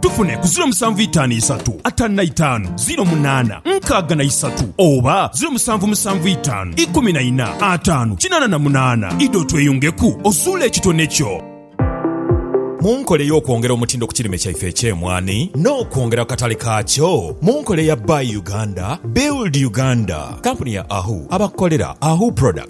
Tufune ku ziro musanvu itaanu isatu ataanu na itaanu ziro munaana nkaaga na isatu oba ziro musanvu musanvu itaanu ikumi na ina ataanu kinaana na munaana. Idha otweyungeku ozuule ekitone kyo. Mu nkola ey'okwongera omutindo ku kirime kyaife eky'emwaani n'okwongera ku katale kaakyo mu nkola eya Buy Uganda, Build Uganda, kampuni ya Ahu abakukolera Ahu Products,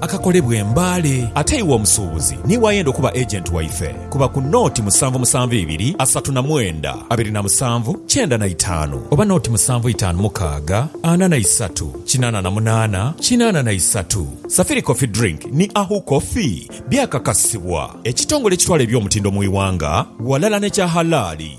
akakolebwa e Mbale. Ate iwe omusuubuzi niiwe ayenda okuba agent waife, kuba ku nooti musanvu musanvu ibiri asatu na mwenda abiri na musanvu kyenda na itaanu oba nooti musanvu itaanu mukaaga ana na isatu kinaana na munaana kinaana na isatu. Safiri Coffee Drink ni Ahu Coffee byakakasibwa ekitongole ekitwala eby'omutindo mu iwanga ghalala n'ekya halaali.